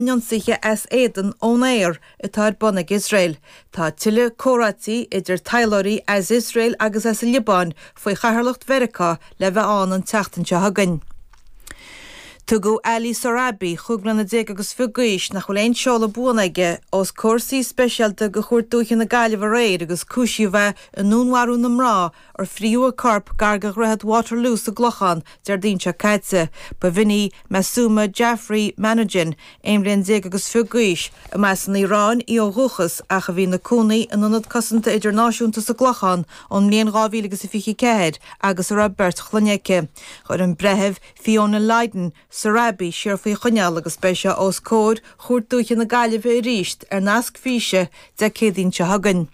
n-ionsaithe as éadan ón aer atá ar bun ag Iosrael. Tá tuilleadh comhráití idir taidhleoirí as Iosrael agus as an Liobáin faoi chathaoirleacht Mheiriceá le bheith ann an tseachtain seo chugainn. Tugadh Ali Sohrabi, cúig bliana déag agus fiche d'aois, nach bhfuil aon seoladh buan aige, os comhair suí speisialta de Chúirt Dúiche na Gaillimhe aréir agus cúisíodh é i ndúnmharú na mná ar fríothadh a corp gar do Dhroichead Waterloo sa gClochán, Déardaoin seo caite. Ba bh'in í Masooma Jaffrey Manojin, aon bhliain déag agus fiche d'aois, a mb'as an Iaráin í ó dhúchas ach a bhí ina cónaí in Ionad Cosanta Idirnáisiúnta sa gClochán ón mbliain dhá mhíle agus a fiche a ceathair agus a raibh beirt chlainne aici. Chuir an Breitheamh Fiona Lydon Sohrabi siar faoi choinneáil agus beidh sé os comhair Chúirt Dúiche na Gaillimhe arís ar nasc físe Dé Céadaoin seo chugainn.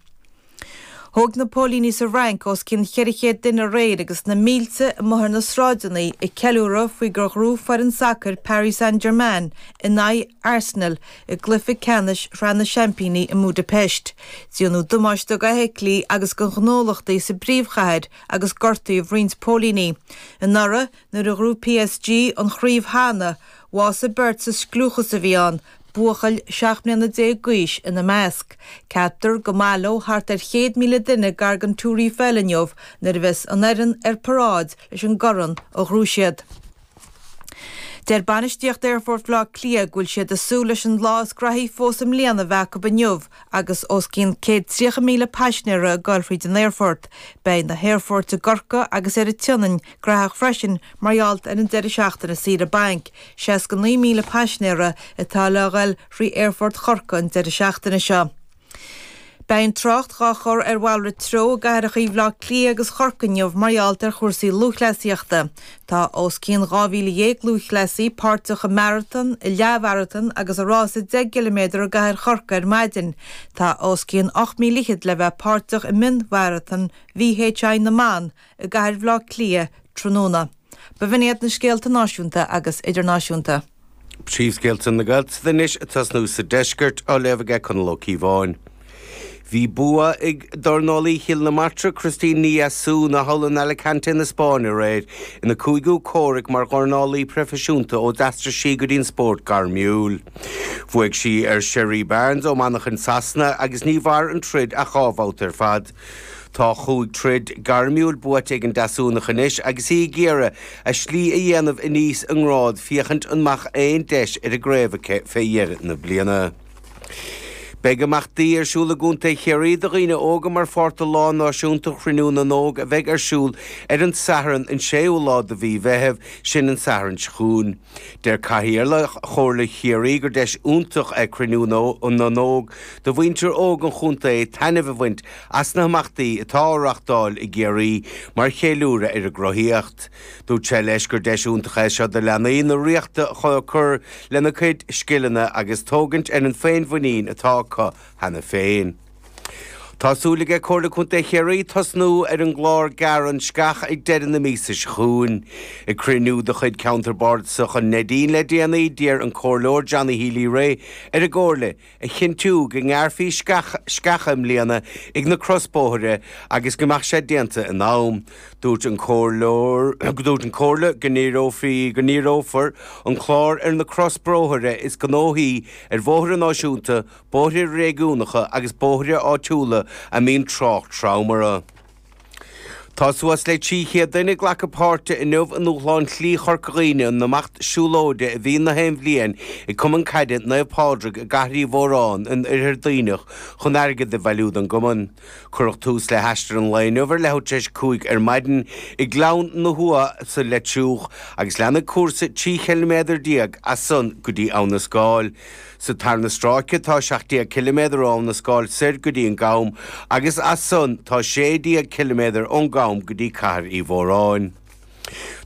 Thóg na póilíní sa Fhrainc os cionn cheithre chéad duine aréir agus na mílte amuigh ar na sráideanna ag ceiliúradh faoi gur ghnóthaigh foireann sacair Paris Saint-Germain in aghaidh Arsenal i gcluiche ceannais Shraith na Seaimpíní i mBudapest. Déanadh damáiste d'fheithiclí agus do ghnólachtaí sa bpríomhchathair agus gortaíodh roinnt póilíní. Anuraidh, nuair a ghnóthaigh PSG an chraobh cheana, bhásaigh beirt sa scliúchas a bhí ann, buachaill seacht mbliana déag d'aois ina measc. Ceaptar go mbaileoidh thart ar chéad míle duine gar don Túr Eiffel inniu nuair a bheas an fhoireann ar paráid leis an gcorn a ghnóthaigh siad. Deir bainistíocht Aerfort Bhaile Átha Cliath go bhfuil siad ag súil leis an lá is graithí fós i mbliana a bheith acu inniu Agus os cionn 130,000 paisinéara ag goil fríd an aerfort, beidh na haerfoirt i gCorcaigh agus ar an tSionainn graitheach freisin mar gheall ar an deireadh seachtaine saoire bainc, 69,000 paisinéara atá le ghoil frí Aerfort Chorcaí an deireadh seachtaine seo. Beidh an trácht dhá chur ar mhalrait treo i gcathracha Bhaile Átha Cliath agus Chorcaí inniu mar gheall ar chúrsaí lúthchleasaíochta. Tá os cionn 12,000 lúthchleasaí páirteach i marathon, i leathmharathon agus i rása 10 gciliméadar i gCathair Chorcaí ar maidin. Tá os cionn ocht míle fhichead le bheith páirteach i mion-mharathon VHI na mban i gCathair Bhaile Átha Cliath tráthnóna. Ba bh'in iad na scéalta náisiúnta agus idirnáisiúnta. Príomhscéalta na Gaeltachta anois ag tosnú sa deisceart, á léamh aige Conall Ó Cíobháin. Bhí bua ag dornálaí Chill na Martra, Christine Ní Dheasúna, thall in Alicante na Spáinne aréir, ina cúigiú comhrac mar dhornálaí proifisiúnta ó d'aistrigh sí go dtí an spórt gairmiúil. Bhuaigh sí ar Sheree Barnes ó Manchain Sasana agus ní mhair an troid ach dhá bhabhta ar fad. Tá chúig troid gairmiúil buaite ag an Deasúnach anois agus í ag iarraidh a slí a dhéanamh aníos i ngrád féachaint an mbeadh aon deis ar an gcraobh aici fé dheireadh na bliana. Beidh imeachtaí ar siúl i gContae Chiarraí do dhaoine óga mar pháirt do Lá Náisiúnta Chruinniú na nÓg a bheidh ar siúl ar an Satharn an 6ú lá de mhí Mheithimh, sin an Satharn seo chugainn. Deir Cathaoirleach Chomhairle Chiarraí gur deis iontach é Cruinniú na nÓg do mhuintir óg an chontae taitneamh a bhaint as na himeachtaí atá á reáchtáil i gCiarraí mar cheiliúradh ar a gcruthaíocht. Dúirt sé leis gur deis iontach é seo do leanaí na Ríochta chun cur lena gcuid scileanna agus tógaint ar an féinmhuinín atá acu cheana féin. Tá súil aige Comhairle Contae Chiarraí tosnú ar an gclár Gearr an Sceach ag deireadh na míosa seo chugainn. Ag cruinniú de chuid Ceantar Bardasach an Neidín le déanaí, d'iarr an Comhairleoir Johnny Healy Rae ar an gComhairle a chinntiú go ngearrfaí sceacha i mbliana ag na crosbhóithre agus go mbeadh sé déanta in am. Dúirt an Comhairleoir, dúirt an Chomhairle go ndíreofar an clár ar na crosbhóithre is gnóthaí ar Bhóithre Náisiúnta bóithre réigiúnacha agus bóithre áitiúla a mbíonn trácht trom orthu. Tá suas le 300 duine ag glacadh páirte inniu i ndúshlán Shlí Chorca Dhuibhne an imeacht siúlóide a bhíonn na haon bhliain ag Cumann Caide Naomh Pádraig i gCathair Uí Mhóráin in Oirthear Duibhneach chun airgead a bhailiú don gcumann. Cuireadh tús le haistear an lae inniu ar leathuair tar éis a cúig ar maidin i nGleann na hUamha sa Leitriúch agus leanfaidh cúrsa 13 chiliméadar as san go dtí Abha na Scáil, Sa tarna stráice atá 17 km ó Abha na Scáil soir go dtí an gCam agus as san tá 16 km ón gCam go dtí Cathair Uí Mhóráin.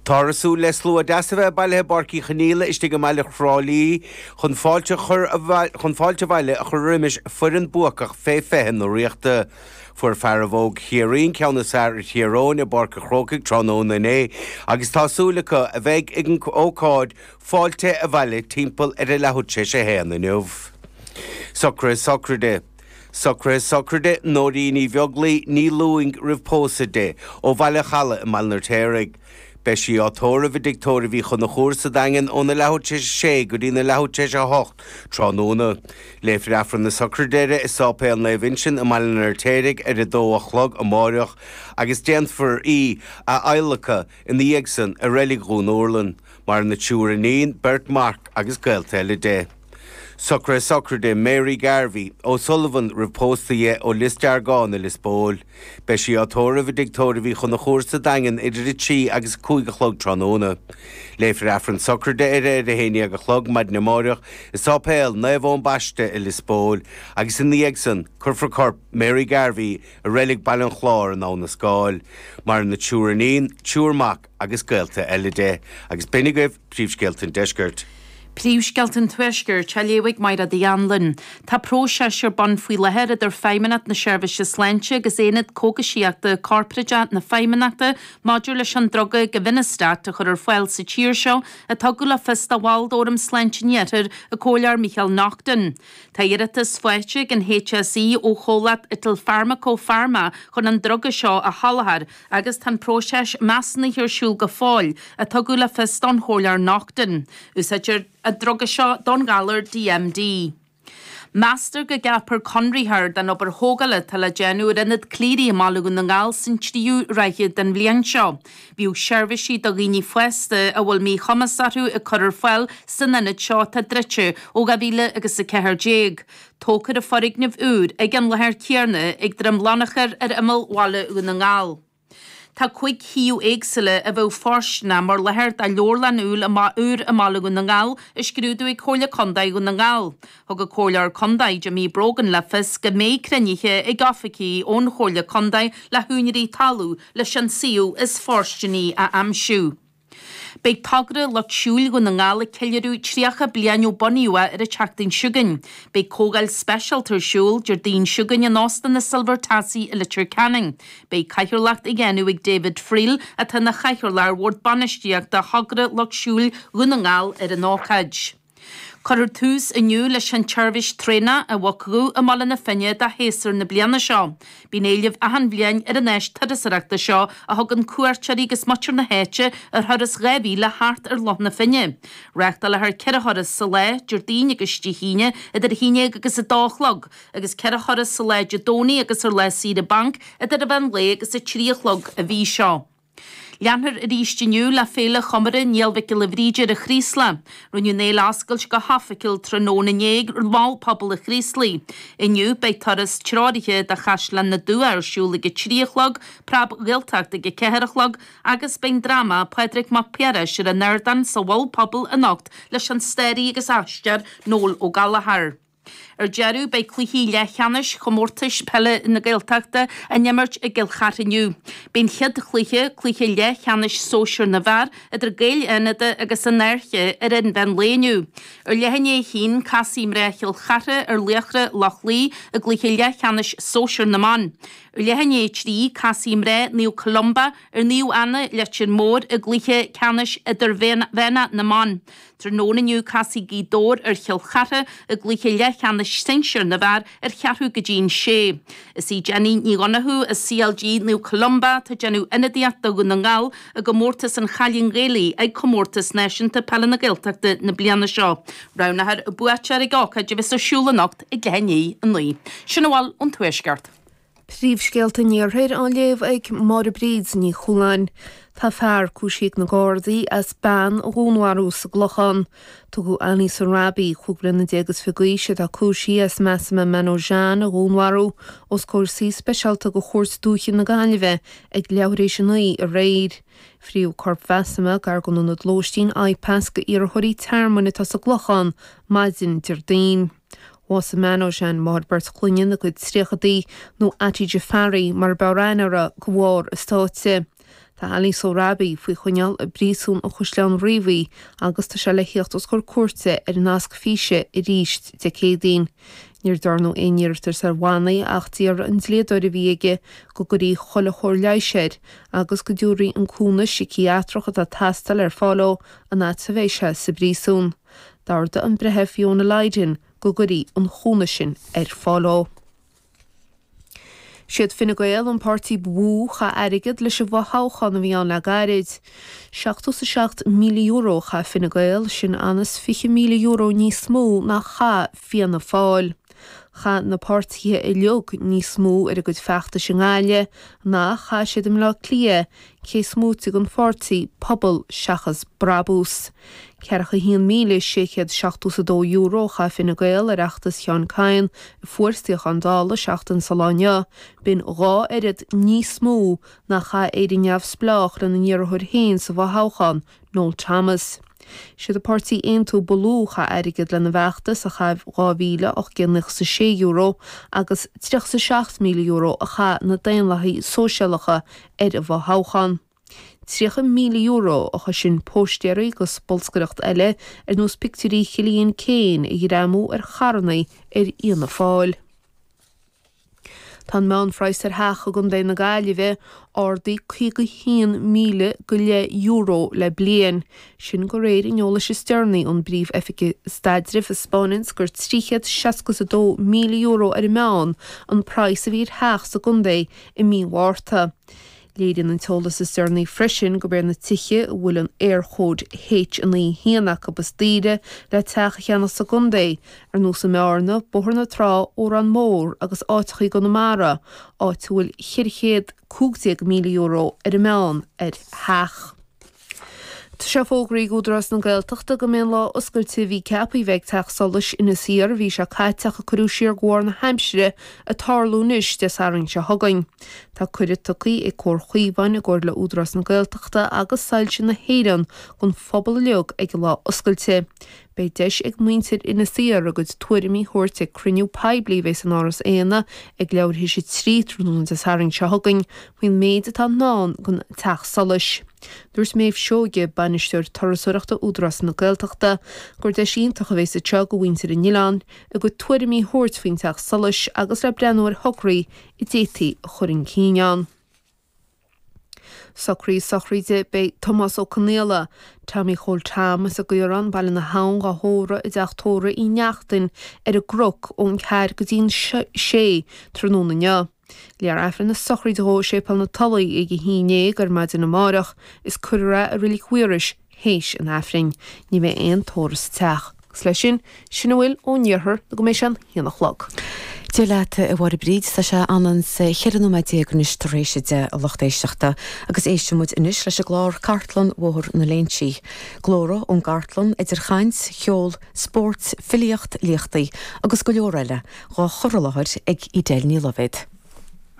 Táthar ag súil le slua deas a bheith bailithe i bPáirc Uí Chonaíola istigh i mbaile Thrá Lí chun fáilte abhaile a chur roimis foireann buacach Fé 20 na Ríochta. Fuair fearaibh óg Chiarraí an ceann is fearr ar Thír Eoghain i bPáirc an Chrócaigh tráthnóna inné agus tá súil acu a bheith ag an ócáid Fáilte abhaile timpeall ar a leathuair tar éis a haon inniu. Socruithe Sochraide Socruithe Sochraide Nóirín Uí Bheaglaoi Ní Lúing roimh pósadh di, ó Bhaile an Chalaidh i mBaile an Fheirtéaraigh. Beidh sí á tórramh i dtigh tórraimh Uí Chonchúir sa Daingean óna leathuair tar éis a sé go dtína leathuair tar éis a hocht tráthnóna. Léifear Aifreann na Sochraide uirthi i Sáipéal Naomh Uinseann i mBaile an Fheirtéaraigh ar a dó a chlog amáireach agus déanfar í a adhlacadh ina dhiaidh san i reilig Dhún Urlann, maireann triúr iníon, beirt mac agus gaolta eile di. Socruithe sochraide Mary Garvey, O Sullivan roimh pósadh di ó Lios Deargáin i Lios Póil. Beidh sí á tórramh i dtigh tórraimh Uí Chonchúir sa Daingean idir a trí agus a cúig a chlog tráthnóna. Léifear Aifreann sochraide uirthi ar a haon dhéag a chlog maidin amáireach i Sáipéal Naomh Eoin Baiste i Lios Póil agus ina dhiaidh san cuirfear corp Mary Garvey i Reilig Baile an Chláir in Abha na Scáil. Maireann a triúr iníon, triúr mac agus gaolta eile di. Agus b'in agaibh Príomhscéalta an Deiscirt. Príomhscéalta an Tuaiscirt, á léamh ag Máire D. Anluain. Tá próiseas ar bun faoi láthair idir Feidhmeannacht na Seirbhíse Sláinte agus Aonad Cógaisíochta Corporáide na Feidhmeannachta maidir leis an druga Givinostat a chur ar fáil sa tír seo, a tugadh le fios do bhall d'fhóram sláinte an Iarthair, an Comhairleoir Micheál Naughton. Tá iarratas faighte ag an HSE ó chomhlacht Italfarmaco Pharma chun an druga seo a sholáthar agus tá an próiseas measúnaithe ar siúl go fóill, a tugadh le fios don Chomhairleoir Naughton. Úsáidtear an druga seo don ghalar DMD. Meastar go gceapfar conraitheoir don obair thógála atá le déanamh ar Ionad Cleary i mBaile Dhún na nGall san tríú ráithe den bhliain seo. Bhíodh seirbhísí do dhaoine fásta a bhfuil míchumas orthu á gcur ar fáil san ionad seo atá druidte ó 2000 agus a 14. Tógfar an foirgneamh úr ag an láthair chéarna ag Droim Lonachair ar imeall Bhaile Dhún na nGall. Tá cúig shuíomh éagsúla a bheadh fóirsteanach mar láthair do leabharlann úll i mbath úr i mBaile Dhún na nGall á scrúdú ag Comhairle Contae Dhún na nGall. Thug an Comhairleoir Contae Jimmy Brogan le fios go mbeidh cruinnithe ag oifigigh ón Chomhairle Contae le húinéirí talún leis an suíomh is fóirsteanaí a aimsiú. Beidh togra Lucht Siúil Dhún na nGall ag ceiliúradh 30 bliain ó bunaíodh é ar an tseachtain seo chugainn. Beidh comhdháil speisialta ar siúl Déardaoin seo chugainn in Óstán na Silver Tassie i Leitir Ceanainn. Beidh cathaoirleacht á dhéanamh ag David Friel, atá ina chathaoirleach ar Bhord Bainistíochta Thogra Lucht Siúil Dhún na nGall, ar an ócáid. Cuirfear tús inniu leis an tseirbhís traenach An Mhuc Dhubh i mBaile na Finne do shéasúr na bliana seo. Bíonn éileamh achan bhliain ar an áis turasoireachta seo a thugann cuairteoirí agus muintir na háite ar thuras dhá mhíle thart ar Loch na Finne. Reáchtálfar ceithre thuras sa lá, Déardaoin agus Dé hAoine idir a haon dhéag agus a dó a chlog, agus ceithre thuras sa lá Dé Domhnaigh agus ar lá saoire bainc idir an mheán lae agus a trí a chlog. An mhí seo. Leanfar arís inniu le Féile Chomórtha Néill Mhic Giolla Bhríde ar an Chraoslach. Rinneadh an fhéile a oscailt go hoifigiúil tráthnóna inné ag Mol Pobail an Chraoslaigh. Inniu beidh turas treoraithe de Chaisleán na dTuath ar siúl ag a trí a chlog, Preab Ghaeltacht ag a ceathair a chlog agus beidh an dráma Pádraig Mac Piarais ar an ardán sa Mhol Pobail anocht leis an staraí agus aisteoir Noel Ó Gallchóir. Ar deireadh, beidh cluichí leathcheannais Chomórtais Peile na Gaeltachta á n-imirt i gCill Chartha inniu. Beidh an chéad chluiche, cluiche leathcheannais Sóisear na bhFear, idir Gaeil Fhánada agus An Fhairche ar an mheán lae inniu. Ar leath i ndiaidh a haon, casfaidh mná Chill Chartha ar Laochra Loch Lao i gcluiche leathcheannais Sóisear na mBan. Ar leath i ndiaidh a trí, casfaidh mná Naomh Columba ar Naomh Anna, Leitir Móir i gcluiche ceannais Idirmheánach na mBan. Tráthnóna inniu casfaidh Gaoth Dobhair ar Chill Chartha i gcluiche leathcheannais sinsir na bhfear ar cheathrú go dtí an sé. Is í Jenny Ní Dhonnachú as CLG Naomh Columba atá ag déanamh ionadaíocht do Dhún na nGall i gcomórtas an Chailín Ghaelaigh ag Comórtas Náisiúnta Peile na Gaeltachta na bliana seo. Roghnófar an buaiteoir ag ócáid a bheas ar siúl anocht ag leath i ndiaidh a naoi. Sin a bhfuil ón Tuaisceart. Príomhscéalta an Iarthair á léamh ag Máire Bríd Ní Chualáin. Tá fear cúisithe ag na Gardaí as bean a dhúnmharú sa gClochán. Tugadh Ali Sohrabi, cúig bliana déag is fiche d'aois, atá cúisithe as Masumeh Manojan a dhúnmharú, os comhair suí speisialta go Chúirt Dúiche na Gaillimhe ag leathuair tar éis a naoi aréir. Frítheadh corp Mhasumeh gar don ionad lóistín IPAS go iarrthóirí tearmainn atá sa gClochán maidin Déardaoin. Bhásaigh Manojan, máthair beirt chlainne ina cuid tríochaidí nó Ati Jafari mar ab fhearr aithne uirthi go bharr a sáite. Tá Ali Sohrabi faoi choinneáil i bpríosún an Chaisleáin Riabhaigh agus tá sé le theacht os comhair cúirte ar an nasc físe arís Dé Céadaoin. Níor dearnadh aon iarratas ar bhannaí ach d'iarr an dlíodóir a bhí aige go gcuirfí chuile chóir leighis air agus go dtabharfaí an cúnamh siciatreach atá ag teastáil ar fáil dhó an fhad a bheidh sé sa bpríosún. D'ordaigh an Breitheamh Fiona Lydon go gcuirfí an cúnamh sin ar fáil dhó. Siad Fine Gael an páirtí ba mhó chaith airgead leis an bhfothoghchán a bhí ann le gairid. Seachtó 's a seacht míle euro a chaith Fine Gael, sin aon is fiche míle euro níos mó ná chaith Fianna Fáil. Chaith na páirtithe uiliog níos mó ar a gcuid feachtais i nGaillimh ná a chaith siad i mBleá Cliath, cés moite den pháirtí Pobal Seachas Brabús. €41,672 a chaith Fine Gael ar fheachtas Sheán Kyne a fuair suíochán Dála seachtain is an lá inniu, b'in dhá oiread níos mó ná a chaith Éire Neamhspleách lena n-iarrthóir féin sa bhfothoghchán, Noel Thomas. Is iad an páirtí Aontú ba lú a chaith airgead lena bhfeachtas, a chaith €2,896, agus €37,000 a chaith na Daonlathaigh Sóisialacha ar an bhfothoghchán. €30,000, a chosain póistéirí agus bolscaireacht eile ar nós pictiúirí Chillian Keane a ghreamú ar charrannaí ar Fhianna Fáil. Tá an meánphraghas ar theach i gContae na Gaillimhe ardaithe €51,000 go leith le bliain, sin go réir an eolais is deireanaí ón bPríomh-Oifig Staidrimh a spáineanns gur €362,000 ar an meán an praghas a bhí ar theach sa gcontae i mí Mhárta. Léiríonn an t-eolas is deireanaí freisin gurb iad na tithe a bhfuil an Éirchód H91 acu is daoire le teach a cheannach sa gcontae, ar nós i mBearna, Bóthar na Trá, Órán Mór agus áiteacha i gConamara, áit a bhfuil €415,000 ar an meán, ar theach. Seo fógra ag Údarás na Gaeltachta go mbeidh an lá oscailte a bhí ceapaí bheith ag Teach Solais Inis Oírr Aoine seo caite ach a cuireadh siar de bharr na haimsire ag tarlú anois Dé Sathairn seo chugainn. Tá cuireadh tugthaí ag Comhar Chaomháin i gcomhar le Údarás na Gaeltachta agus Soilse na hÉireann don phobal uiliog ag an lá oscailte. Beidh deis ag muintir Inis Oírr a gcuid tuairimí thabhairt ag cruinniú poiblí a bheidh san Áras Éanna ag leathuair th'éis 3 tráthnóna Dé Sathairn seo chugainn faoin méid atá i ndán don Teach Solais. Dúirt Méabh Seoige, Bainisteoir Turasóireachta Údarás na Gaeltachta, gur deis iontach a bheidh anseo do mhuintir an oileáin a gcuid tuairimí thabhairt faoin Teach Solais agus le breathnú ar thograí a d'fhéadfaí a chur chun cinn ann. Socruithe sochraide beidh Tomás Ó Conaola, Tommy Chóil Tom, as an gCaorán, Baile na hAbhann, dhá thórramh i dTeach Tórraimh Uí Neachtain ar an gCruc ón ceathair go dtí an sé tráthnóna inniu. Léifear Aifreann na sochraide dhó i Séipéal na Tulaí ag a haon déag ar maidin amáireach is cuirfear é i Roilic Mhaorais, th'éis an Aifrinn ní bheidh aon tórramh sa teach, agus leis sin, sin a bhfuil ón iarthar nó go mbeidh sé an haon a chlog. Dé leat, a Mháire Bríd, tá sé ionann's 14 nóiméad anois tar éis a deich, a lucht éisteachta, agus éisteann muid anois leis an gclár Cartlann Bhóthar na Léinsí. Glórtha ón gcartlann, idir chaint, cheol, spóirt, filíocht, léachtaí agus go leor eile, dhá chur i láthair ag Edel Ní Luibhéad.